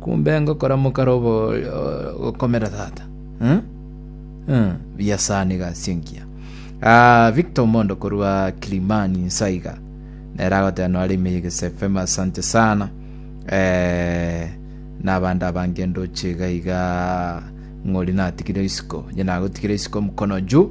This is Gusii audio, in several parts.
Kumbe ngokora mokaro ogokomera tata. Buya sana iga asio ngiya. Ah, Victor Mondo korwa Kilimani nsaiga. Nere agoteba nore ime yegese FM asante sana. Eh, nabande abange ndoche iga iga ng'ori natigire isiko. Nye nagotigire isiko mkono juu.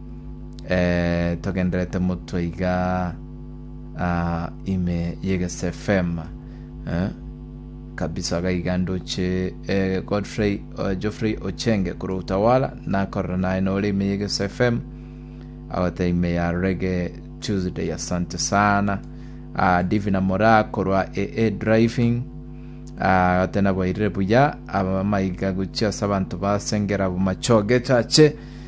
togenderete motwe iga ah, ime yegesefema eh, kabisa iga iga ndoche eh, godfrey eh, geoffrey ochenge koro utawala nakorera naye nore ime yegesefema agote ime ya rege tuesday asante sana ah, divina mora korwa aa driving Ah, tena boirire buya abamaiga gochia ase abanto basengera bomachoge chache